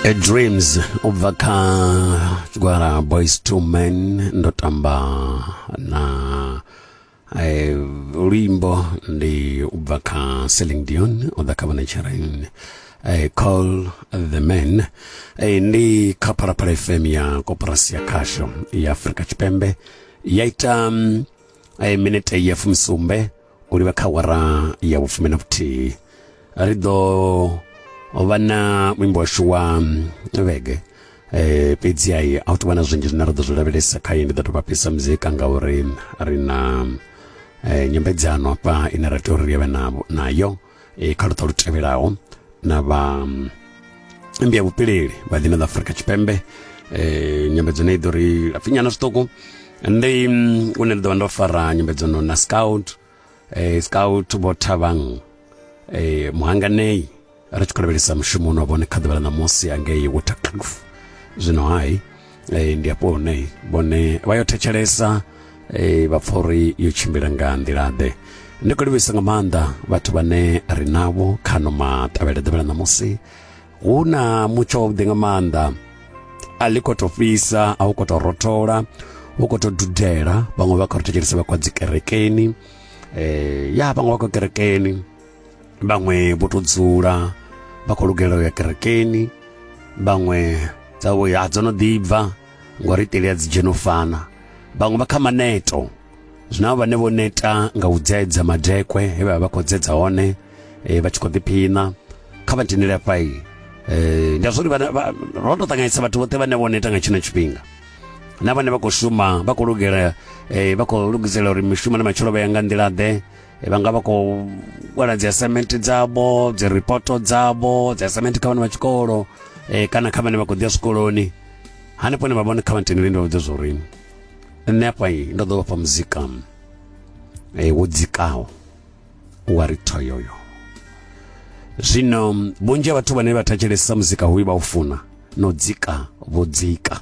A dreams ubva kha tshigwara boys two men ndo tamba na eh, luimbo ndi ubva kha Celine Dion o ḓa kha vhana tshireen eh, call the men eh, ndi kha phalaphala fm ya koporasi ya khasho ya afurika tshipembe ya ita mm, eh, minete ya fumisumbe u livha kha wara ya vhufumi na vhuthihi ri ḓo vha na muimbo washu wa vhege eh fhedzi ai a u tou vha na zwinzhi zwine ra ḓo zwi lavhelesa kha ye ndi ḓo tou vha fhisa muzika ngauri ri na eh, nyambedzano hafha ine ra tea uri ri vhe nayo e kha luṱa lu tevhelaho na vha mm, mmbi ya vhupileli vha dzina ḽa afurika tshipembe eh, nyambedzo ne i ḓo ri lapfinyana zwiṱuku ndi mm, une ndi ḓo vha ndo fara nyambedzano na scout eh, scout vho thavhang eh, muhanganei ri tshi khou lavhelesa mushumo une wa vhone kha ḓuvha ḽa ṋamusi angei watercliff zwino hai e, ndi afho hune vhone vha yo thetshelesa e, vha pfa uri yo tshimbila nga nḓila-ḓe ndi khou livhisa nga maanḓa vhathu vhane ri navho kha no maṱavhele ḓuvha ḽa ṋamusi hu na mutsho wavhuḓi nga maanḓa a ḽi khou tou fhisa a hu khou tou rothola hu khou tou dudela vhaṅwe vha khou ri thetshelesa vha khou dzi kerekeni um ya vhaṅwe vha khou kerekeni vhaṅwe vho to dzula vha khou lugela u ya kerekeni vhaṅwe dzavho ya dzo no ḓibva ngori iteli ya dzi dzheno fana vhaṅwe vha kha maneto zwina vhane vho neta nga u dzedza madekwe he vha vha khou dzedza hone eh, vha tshi khou ḓiphina kha vha tendele afha iyi eh, ndi azwori ro to ṱanganyisa vhathu vhoṱhe vhane vho neta nga tshino tshifhinga na vhane vha khou shuma vha khou lugela eh, vha khou lugisela uri mishumo na matshelo vha ya nga nḓila ḓe Eh, vha nga vha khou wala dzi assignment dzavho dzi ripoto dzavho dzi assignment kha vhana vha tshikolo eh, kana kha vhane vha khou ḓi ya zwikoloni hanefho ne vha vhone kha vhantini vhende vha vhudza zwa uri nṋe afha ndo ḓo vhafha muzika eh, wo dzikaho wa ri thoyoyo zwino vhunzhi ha vhathu vhane vha thetshelesa muzika hoyu vha u funa no dzika vho dzika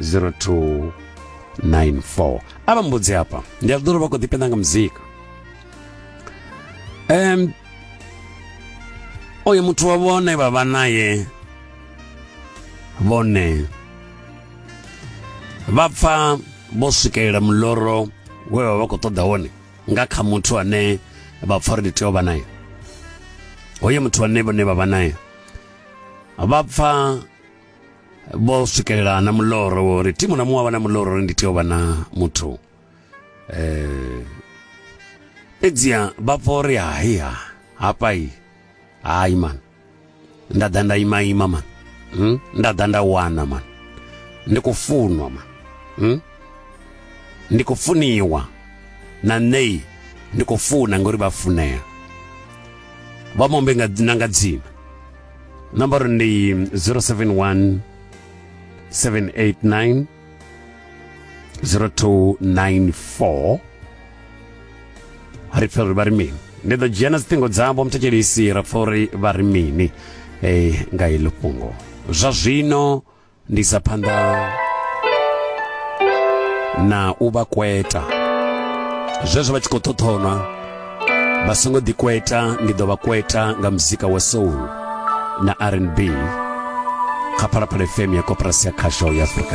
0294 a vha mbudzi hafha ndi a ḓolo vha khou ḓipenda nga muzika um oyo muthu wa vhone vha vha naye vhone vha pfa vho swikelela muloro we vha vha khou ṱoḓa wone nga kha muthu ane vha pfa uri ndi tea u vha naye hoyo muthu ane vhone vha vha naye vha pfa vho swikelela na muloro wori thimu na muṅwe avha na muloro uri ndi tea u vha na muthu um fhedziha vha pfa uri hai ha hafha i hai mani nda ḓa nda ima ima mani hmm? nda ḓa nda wana mani ndi khou funwa mani hmm? ndi khou funiwa na ṋei ndi khou funa ngori vha funea vha mombe na nga dzina number ndi 071 789 0294 ri pfa uri vha ri mini ndi ḓo dzhia na dziṱhingo dzavho muthetshelisi ra pfa uri vha ri mini eh, nga iḽo fhungo zwa zwino ndi sa phanḓa na u vha kweta zwezwo vha tshi khou ṱhoṱhonwa vha songo ḓi kweta ndi ḓo vha kweta nga muzika wa soul na rnb kha phalaphala fm ya koporasi ya khasho ya afrika